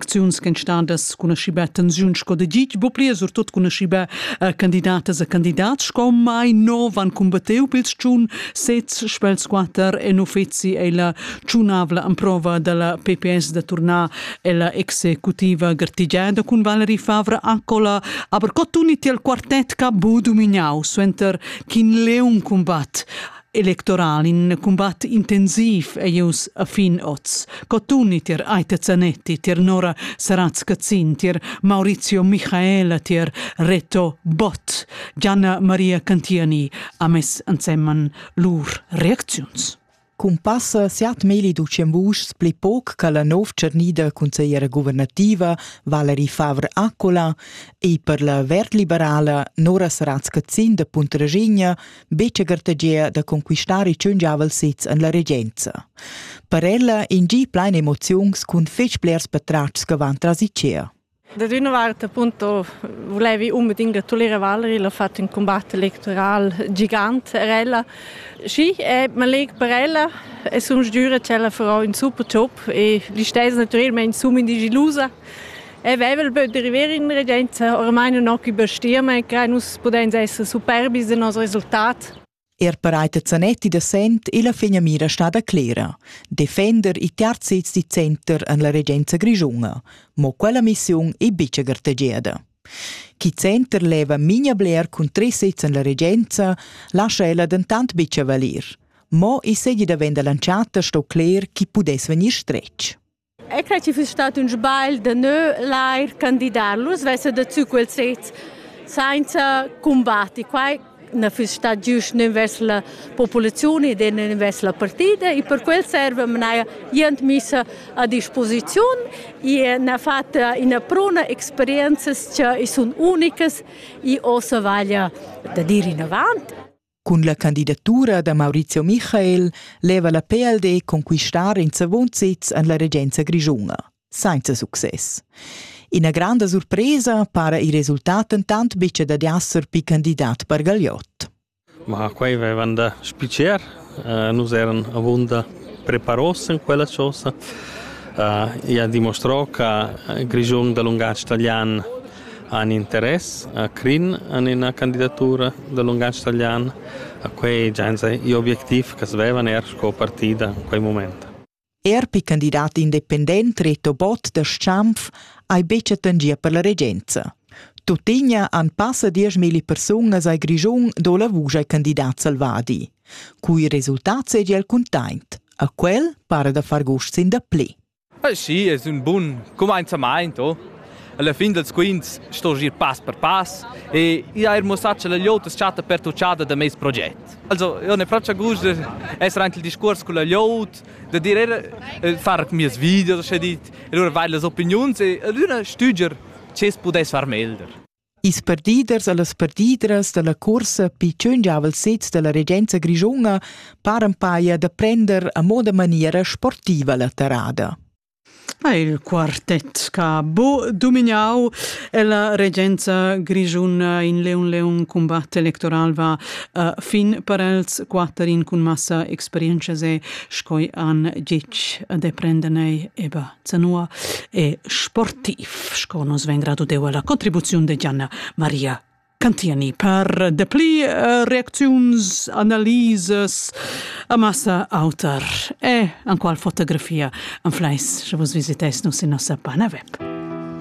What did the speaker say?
acziuns ch'en stadas cun aschiba tensiun sco da gig, bo plia surtut cun aschiba uh, candidatas e candidats sco mai nov han combattiu pils tschun sez spels quater en uffizi e la tschunavla amprova dalla PPS da turnar ella executiva gartigiada cun Valerie Favre Accola, aber co tuni tiel quartet ca bu dumignau suenter ch'in leun combat Electoral in cumbat intensiv e ius a fin oz. Cotuni tier Aita Zanetti, tier Nora Saratz-Cazzin, tier Maurizio Michaela, tier Reto Bott, Gianna Maria Cantiani ha mess ansemman lur reacziuns. Cumpassa siat meli ducem vuschs pli poc che la nov tschernida consigliera guvernativa Valerie Favre-Accola e per la verd-liberala Nora Saratz-Cazzin de Puntraginha betga gartegia da conquistar il tschungiavel sez en la regenza. Per ella in gi plein emoziuns cun fetg blers patratgs che van tras Ikea. Da d'una vart appunto volevi unbedingt gratuliere Valerie, l'ho fatto un combatto elettoral gigant per ella. Sì, e man leg per ella e sum sgiura ch'ella farà un super job e listess naturalmente sum in digilusa. E vevel böt deriver in regenza ormai nun ho cü bastì, ma crai nus pudens esser superbis in nos resultat. Er bereiter Zanetti da Sent e la finamira stada clera, defender i terz sez di center en la regenza grischunga, mo quella missiun è bice gartegiada. Chi center leva minia bler cun tre sez en la regenza, lascia ella dentant bice valir. Mo i segi da venda lanciata sto cler chi pudess vegnir stretg. Eu crai chi füss stat ün sbagl da gnü lair candidar. Nus vessem da tü quel sez sainza cumbatti. Quai na füss stat giüst nen vers la populaziun ed nen vers la partida e per quel serva mnaja jent missa a disposiziun e n'ha fat üna pruna experienzas cha i sun unicas e ossa vaglia da dir inavant. Cun la candidatura da Maurizio Michael leva la PLD conquistar in savun sez en la regenza grischuna, senza success. Ina granda surpresa para il resultat entant betg dad esser pli candidat per Gagliot. Ma quei vevan da spicer, uh, nus eran avunda preparos in quella cosa. Uh, e ha dimostrò che il Grischun da lungatg italian han interess a Crin en ina candidatura da lungatg talian, ha quei gia enzatgei objectiv ch'els vevan er sco partida en quei mument. Er per candidat independent Reto Bott da Schanf ei buca tangia per la regenza. Tuttina han passa dieschmilli persunas ai Grischun do la vusch ai candidat Salvadi. Cui resultat seigi el cuntaint. A quel para da far gust sin da pli. Ah, sì, es ün bun cumainzamaint, oh. Alla fin dals quints sto gir pass per pass e i ha er muossà cha la gliout as chatta pertuchada da meis proget. Also, io ne faccio gust de essere anche il discuors con la gliout, de dir er far mies video, sche dit, e lura vair las opiniuns e alüna stüdger, che es pudess far meglder. Ils perdiders e las perdidras dalla cuorsa pitschen giavel sez dalla regenza grischuna paran paia da prender a moda maniera sportiva la terrada. Il quartett che ha bo domignau e la regenza grischuna in leun leun combatt electoral va uh, fin per els quatter in cun massa experienza se scoi an gic de prender nei eba zanua e sportiv, sco nos veng deu alla contribuziun de Gianna Maria Cantiani per de pli eh, reacziuns, analises, amassa auter e an qual fotografia an fleis, che vos visites nus in nossa pana web.